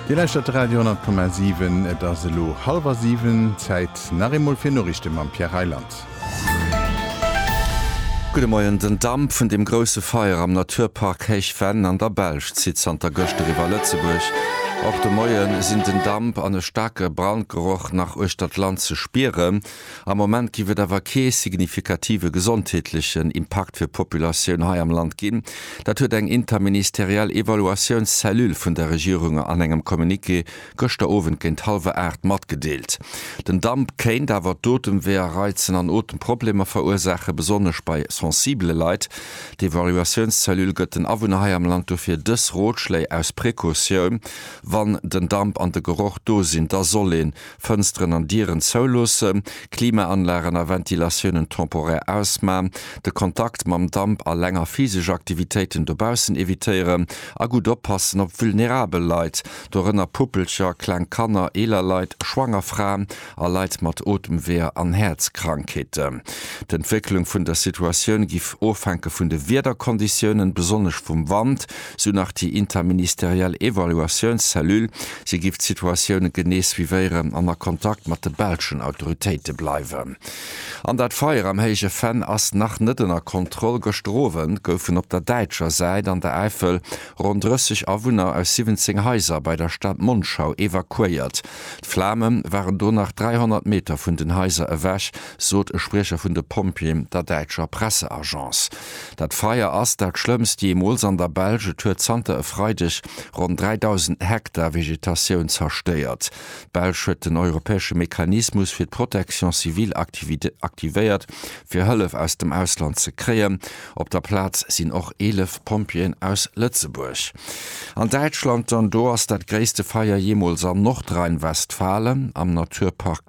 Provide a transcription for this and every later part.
Dir lauschtert de Radio 10,7. Et ass elo hallwer siwen. Zäit nach eemol fir Noriichte mam Pierre Reyland. Gudde Moien. Den Damp vun dem grousse Feier am Naturpark Héich Venn an der Belsch zitt zanter gëschter iwwer Lëtzebuerg. Och de Moie sinn den Damp an e staarke Brandgeroch nach uechter d'Land ze spieren. Am Moment giff et awer kee signifikative gesondheetlechen Impakt fir d'Populatioun hei am Land ginn. Dat huet eng interministeriell Evaluatiounscellule vun der Regierung an engem Communiqué gëschter Owend géint hallwer 8 matgedeelt. Den Damp kéint awer d'Otemweeër reizen an Otemproblemer verursaachen, besonnesch bei sensibele Leit. D'Evaluatiounscellule gëtt den Awunner hei am Land dofir dës Rotschléi aus Precautioun, Wann den Damp an de Geroch do sinn, da soll een Fënsteren an Dieren zouloossen, Klimaanlagen a Ventilatiounen temporaire ausman, de Kontakt mam Damp a länger physesch Aktivitéiten dobaussen evitéieren a gutt oppassen op vulnerabel Leit, dorënner Puppelcher, kleng Kanner, eeler Leit, schwanger Fraen a Leit mat Otemweeër an Häerzkrankheeten. D'Entwécklung vun der Situatioun giff ofhänke vun de Wiederkonditiounen, besonnesch vum Wand, sou nach déi interministeriell Evaluatiounscellule. Si giff d'Situatioune genee suivéieren an a Kontakt mat de belschen Autoritéite bleiwen. An dat Feier am Héije Venn ass nach net ënner Kontroll. Gëschter Owend goufen op der däitscher Säit an der Äifel ronn 30 Awunner aus 17 Haiser bei der Stad Monschau evakuéiert. D'Flame waren do nach 300 Meter vun den Haiser ewech, sot e Spriecher vun de Pompjeeën der däitscher Presseagence. Dat Feier ass dat schlëmmst jeemools an der Belsch. Et huet zanter e Freideg ronn 3.000 Hektar Vegetatioun zerstéiert. D'Belsch huet den europäesche Mechanismus fir d'Protection civile aktivéiert, fir Hëllef aus dem Ausland ze kréien. Op der Plaz sinn och 11 Pompjeeën aus Lëtzebuerg. An Däitschland dann, do ass dat gréisste Feier jeemools an Nordrhein-Westfalen am Naturpark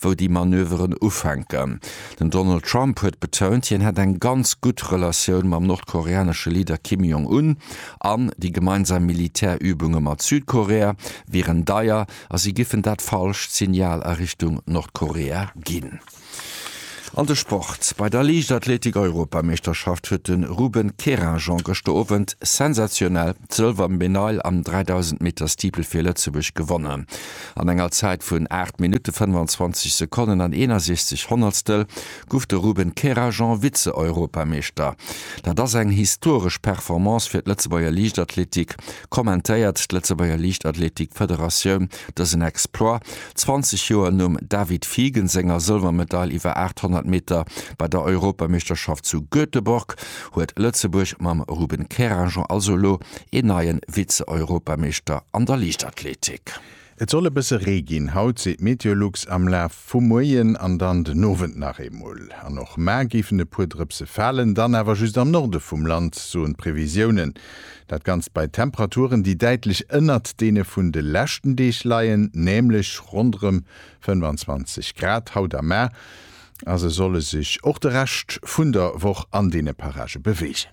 wou déi Manöveren ufänken. Den Donald Trump huet betount, hien hätt eng ganz gutt Relatioun mam nordkoreanesche Leader Kim Jong Un an déi gemeinsam Militärübunge mat Südkorea wieren deier a si giffen dat falscht Signal a Richtung Nordkorea ginn. An de Sport, Bei der Liichtathletik-Europameeschterschaft huet de Ruben Kerinjon gëschter Owend sensationell d'Sëlwermedail am 3000 Meter Steeple fir Lëtzebuerg gewonnen. An enger Zäit vun 8 Minutte 25 Sekonnen an 61 Honnertstel guff de Ruben Kerajan Vize-Europameeschter. Dat ass eng historesch Performance fir d'Lëtzebuerger Liichtathletik, kommentéiert d'Lëtzebuerger Liichtathletik Federatioun dësen Exploit 20 Joer nom David Fiegen senger Sëlwermedail iwwer 800 Meter bei der Europameeschterschaft zu Göteborg huet Lëtzebuerg mam Ruben Kerajan also elo een neie Vize-Europameeschter an der Liichtathletik. Bréck. Et soll e bësse Ree ginn haut, seet d'Meteolux, am Laf vum Moien an dann den Owend nach eemol. An och mar géifen e puer Drëpse falen, dann awer just am Norde vum Land, soen d'Previsiounen. Dat Ganzt bei Temperaturen, déi däitlech ënnert deene vun de leschten Deeg leien, nämlech ronderëm 25 Grad haut a mar. A sou soll e sech och de Rescht vun der Woch an deene Parage beweegen.